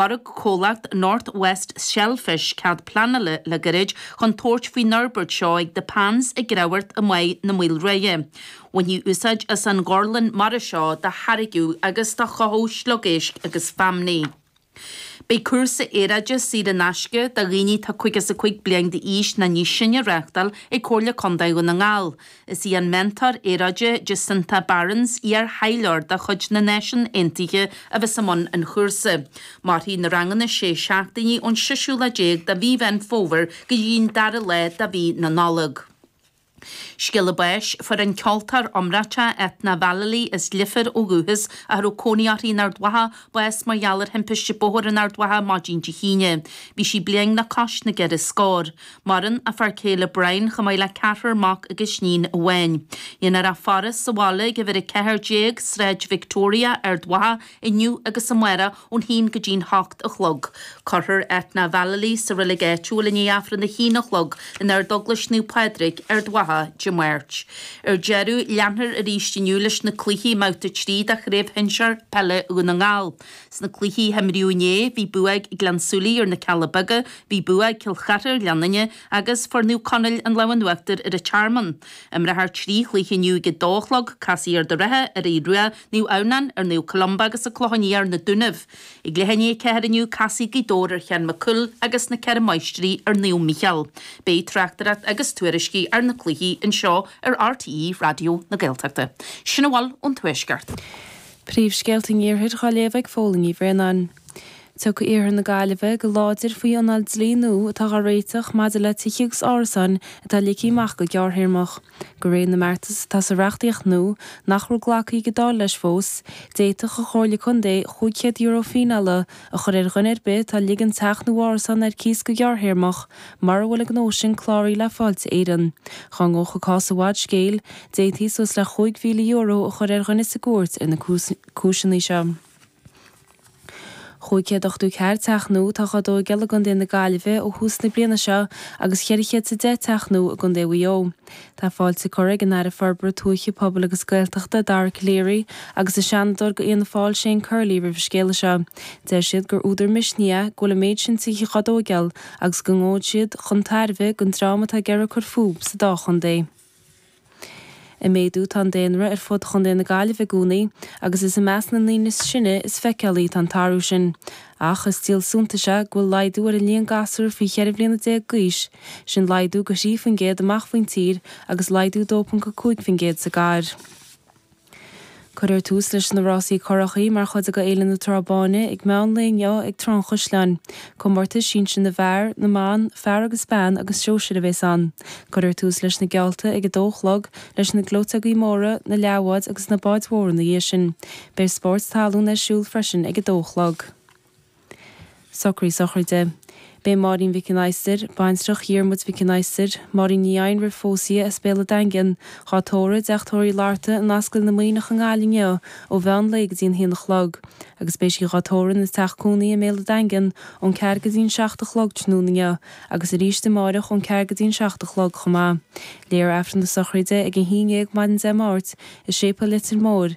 Lorg comhlacht North West Shellfish cead pleanála le gairid chun tabhairt faoin fhorbairt seo ag The Pans i gCreamhghort i mBáighe na Maoile Ruaidhe. Bhainfí úsáid as an ghorlann mara seo do tháirgeadh agus do chothódh sliogéisc agus feamnaí. Beidh cúrsa aeráide saor in aisce do dhaoine atá 55 bliain d'aois ná níos sine á reáchtáil ag Comhairle Contae Dhún na nGall. Is í an meantóir aeráide Jacinta Barrins, iar-thaidhleoir de chuid na Náisiún Aontaithe, a bheas i mbun an chúrsa. Mairfidh na ranganna sé seachtainí ón seisiú lá déag de mhí Mheán Fómhair go dtí'n dara lá de mhí na Nollag. Scéala báis fuair an ceoltóir iomráiteach Eithne Vallely, as Leifear ó dhúchas, ach a raibh cónaí uirthi in Ard Mhacha, bás mar gheall ar thimpiste bóthair in Ard Mhacha maidin Dé hAoine. Bhí sí bliain le cois na gceithre scór. Maireann a fear céile Brian chomh maith le ceathrar mac agus iníon amháin. Déanfar a faire sa bhaile ag uimhir 14, Sráid Victoria, Ard Mhacha, inniu agus amárach ón haon go dtí'n hocht a chlog. Cuirfear Eithne Vallely sa reilig áitiúil i ndiaidh Aifreann a haon a chlog in Ardeaglais Naomh Pádraig, Ard Mhacha, Dé Máirt. Ar deireadh, leanfar arís inniu leis na cluichí i mbabhta 3 de Chraobh Shinsear Peile Dhún na nGall. Sna cluichí a himríodh inné, bhí bua ag Gleann Súilí ar na Cealla Beaga, bhí bua ag Cill Chartha ar Gleann Fhinne agus fuair Naomh Conaill an lámh in uachtar ar an Tearmann. Imreofar trí chluiche inniu ag 2 a chlog, casfaidh Ard an Rátha ar Aodh Rua, Naomh Adhamhnán ar Naomh Columba agus An Clochán Liath ar Na Dúnaibh. I gcluichí a 4 inniu, casfaidh Gaoth Dobhair ar Sheán Mac Cumhaill agus Na Ceithre Máistrí ar Naomh Mícheál. Beidh tráchtaireacht agus tuairiscí ar na cluichí anseo ar RTÉ Raidió na Gaeltachta. Sin a bhfuil ón Tuaisceart. Príomhscéalta an Iarthair dhá léamh ag Fódhla Ní Bhraonáin. Tiocfaidh iarthar na Gaillimhe go láidir faoi anáil dlí nua atá dhá réiteach maidir le tithe agus árasáin atá ligthe amach go gearrthéarmach. De réir na mbeartas atá sa reachtaíocht nua, nach raibh glactha ag an Dáil leis fós, d'fhéadfadh an Chomhairle Contae €500 fíneála a chur ar dhuine ar bith atá ag ligean teach nó árasán ar cíos go gearrthéarmach, mura bhfuil a ngnó sin cláraithe le Fáilte Éireann. Dhá ngabhfadh an cás i bhfad scéil, d'fhéadfaí suas le chúig mhíle euro a chur ar dhuine sa gcúirt ar na cúiseannaí seo. Chúig chéad ochtó ceathair teach nua atá dhá dtóigeáil i gContae na Gaillimhe ó thús na bliana seo agus cheithre chéad is a deich teach nua i gContae Mhaigh Eo. Tá fáilte curtha ag an Aire Forbartha Tuaithe, Pobail agus Gaeltachta, Dara Calleary, agus an Seanadóir de Fhianna Fáil, Shane Curley, roimh an scéala seo. Deir siad gur údar misnigh é go bhfuil an méid sin tithe á dtóigeáil agus go ngabhfaidh siad chun tairbhe don dream atá ag iarraidh cur fúb sa dá chontae. Ag méadú atá an daonra ar fud Chontae na Gaillimhe i gcónaí agus is i measc na ndaoine is sine is feiceálaí atá an t-athrú sin. Ach is díol suntais é go bhfuil laghdú ar an líon gasúr faoi cheithre bhliana déag d'aois, sin laghdú go thrí faoin gcéad amach faoin tír agus laghdú 2.5 faoin gcéad sa gcathair. Cuirfear tús leis na rásaí currachaí mar chuid de Fhéile na Trá Báine ag meán lae inniu ag Trá an Chaisleáin. Comórtas sinsir na bhfear, na mban, fear agus bean agus sóisir a bhéas ann. Cuirfear tús leis na geallta ag a dó a chlog, leis na gleoiteogaí móra, na leathbháid agus na báid mhóra ina dhiaidh sin. Beidh spóirt talún ar siúl freisin ag a dó a chlog. Socraí sochraide. Beidh Máirín Mhic an Adhastair, baintreach Dhiarmuid Mhic an Adhastair, Máirín Ní Eidhin roimh phósadh as Béal a' Daingin, dhá tórramh, i dteach tórraimh Uí Fhlatharta in Ascaill na Muimhneach i nGaillimh inniu ó mheán lae go dtí an haon a chlog agus beidh sí dhá tórramh ina teach cónaí i mBéal a' Daingin ón ceathair go dtí an seacht a chlog tráthnóna inniu agus aríst amáireach ón ceathair go dtí an seacht a chlog chomh maith. Léifear Aifreann na sochraide ag a haon déag maidin Dé Máirt i Séipéal Leitir Móir,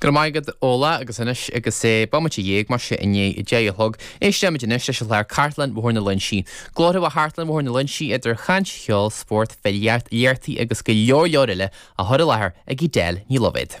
Go raibh maith agat Ola agus anois agus sé bomaite dhéag mar sé i ndiaidh a deich a chlog. Éistfimid anois leis an chlár Cartlann Bhóthar na Léinsí. Glórtha ó Chartlann Bhóthar na Léinsí idir chaint, cheol, spórt, filíocht, léachtaí agus go leor leor eile á chur i láthair ag Edel Ní Loibhéad.